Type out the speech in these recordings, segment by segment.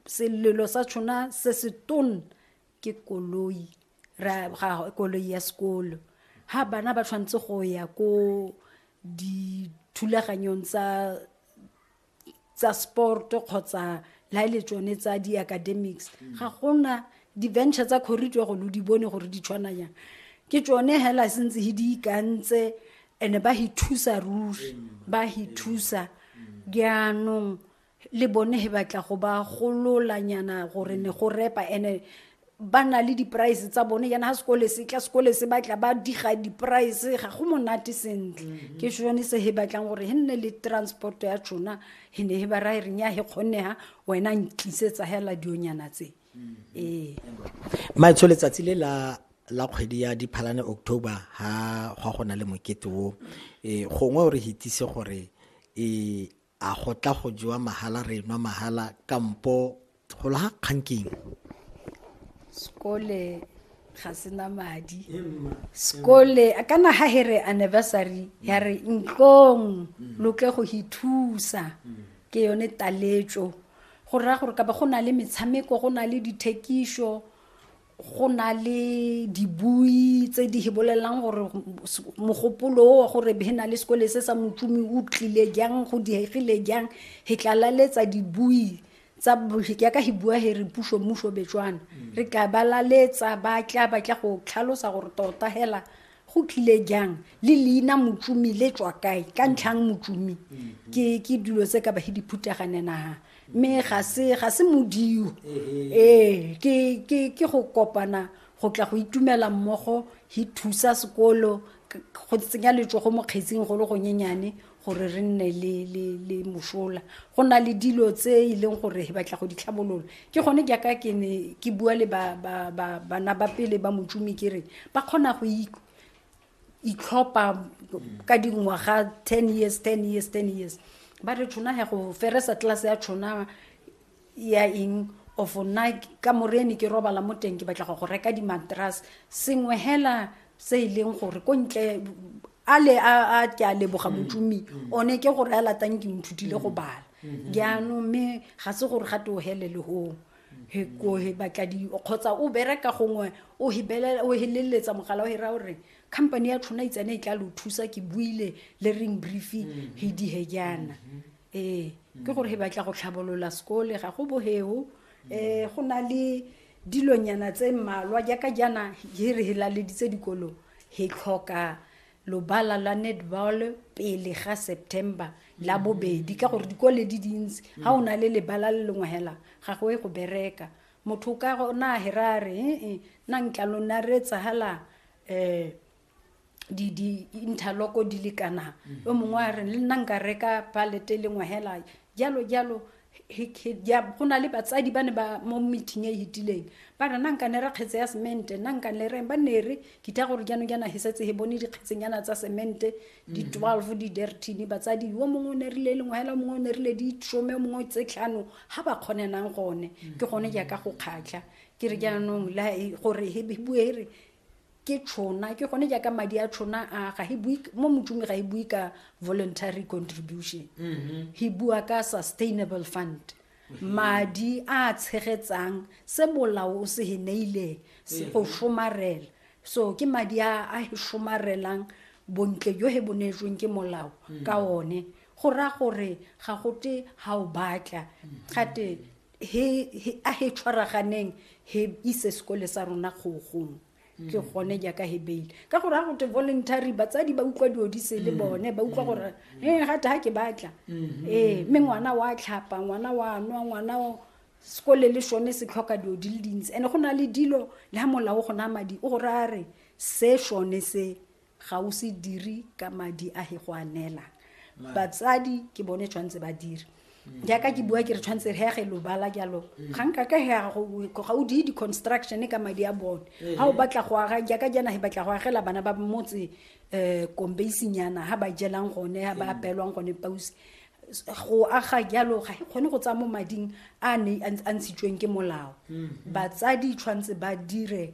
selelo sa tshona se se tone ke koloi ra ga koloi ya sekolo ha bana ba tshwanetse go ya ko dithulaganyong tsa tsa sport kgotsa la ile e tsone tsa di academics ga gona di venture tsa corridor go lo di bone gore di tshwana yang ke tsone hela sentse he di ikantse ene ba hi thusa ruri ba hi thusa jaanong le bone he batla go ba gololanyana gore ne go repa ene ba na le di-price tsa bone yana ga sekole se tla sekole se batla ba diga di-price ga go monate sentle mhm. ke sone se he batlang gore he nne le transport ya tšona he ne he ba rae reng ya he kgonega wena ntlisetsa hela dionyana tse mhm. ee maetsho letsatsi le la la kgwedi ya diphalane october ga gwa go na le mokete o um gongwe o re hitise gore um a go tla go jewa mahala re nwa mahala kampo golo ga kgang keng sekole ga sena madi sekole kana ga he re anniversary ya re ntlong loke go ithusa ke yone taletso go raya gore ka ba go na le metshameko go na le dithekiso go na le dibui tse di bolelelang gore mogopolo wa gore he na le sekole se sa motsumi o tlile jang go diegile jang he tlalaletsa dibui tsa ya ka he bua he re puso mmuso betswana mm. re tla balaletsa ba tla ba tla go tlhalosa gore tota hela go tlile jang le leina motsumi le tswa kae ka ntlhang motsumi ke ke dilo tse ka bahe diphuteganenaga mme ga se ga se modio ee ke ke ke go kopana go tla go itumela mmogo hi thusa sekolo go tsenya letsogo mo kgetsing go le gonyenyane gore re nne le le le mosola go na le dilo tse e leng gore he batla go di tlhabolola ke gone ke ka ke ne ke bua le ba ba ba bana ba pele ba motšumi ke re ba kgona go itlhopha ka dingwaga ten years ten years ten years ba re tshona ya go feresa tlase ya tshona ya eng of nna ka morene ke robala mo teng ke batla go go reka dimatras sengwe hela se e leng gore ko ntle a le a ke a leboga mm. motumi mm. one ke gore a latang ke nthutile go mm. bala mm-hmm. jaanong mme ga se gore ga te o helele goo he ko he batla di kgotsa o bereka gongwe o hibelela o heleletsa mogala o hira gore company ya tshwana itsane e tla lo thusa ke buile le ring briefing he di he jana mm-hmm. ee ke gore he batla go tlhabolola sekole ga go boheo um go na le dilonyana tse mmalwa jaaka jaana he re he laleditse dikolo he tlhoka lobala la netball pele ga september la bobedi ka gore dikole di dintsi ga o na le lebala le lengwe hela ga go e go bereka motho ka gona a hera a re ee nna nkalo nna re etsahala um di di interlock di le kana o mongwe a re le nna nka reka palete e lengwe hela jalo jalo he- he- ya- go na le batsadi ba ne ba mo meeting e e hitileng ba re nna nka ne re kgetse ya semente nna nka ne re ba ne re ke tla gore jaanong jaana he setse he bone dikgetsenyana tsa semente di 12 di dertine batsadi yo mongwe o ne rile e lengwe hela o mongwe o ne rile di some o mongwe tse tlhano ga ba kgonenang gone ke gone jaaka go kgatlha ke re jaanong la e- gore he bue re ke tšhona ke gone jaaka madi a tšhona a ga he bue mo motšomi ga e bue ka voluntary contribution mm-hmm. he bua ka sustainable fund mm-hmm. madi a tshegetsang se molao o se he neileng se go mm-hmm. somarela so ke madi a a he somarelang bontle jo he bonetsweng ke molao mm. ka one go raya gore ga gote ga o batla gate he, he, a he tshwaraganeng he ise sekole sa rona kgogong ke gone jaaka he beile ka gore ga gote voluntary batsadi ba utlwa dilo di se le mm. bone ba utlwa mm. gore e gate ga ke batla mm-hmm. ee mme ngwana wa tlhapa ngwana wa nwa ngwana sekole le sone se tlhoka dilo di le dintsi and-e go na le dilo le ga molao go na madi o gore a re se sone se ga o se dire ka madi a he go a neela batsadi ke bone tshwanetse ba dire mm. jaaka ke bua ke re tshwanetse re hege lobala jalo mm. ga nka ka hega ga o die di-construction ka madi a bone eh. ga o batla go aga jaaka jana he batla go agela bana ba motse um kombeisinyana ga ba jelang gone ga ba mm. apelwang gone pausi go aga jalo ga e kgone go tsaya mo mading a ne a ntshitsweng ke molao batsadi tshwanetse ba dire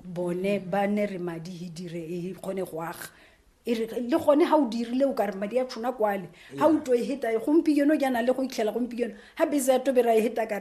bone ba ne re madi he dire e kgone go aga e re le gone ga o dirile o kare madi a tshona kwale ga o to e heta e gompieno jaana le go itlhela gompieno ga bese ya tobera e heta kare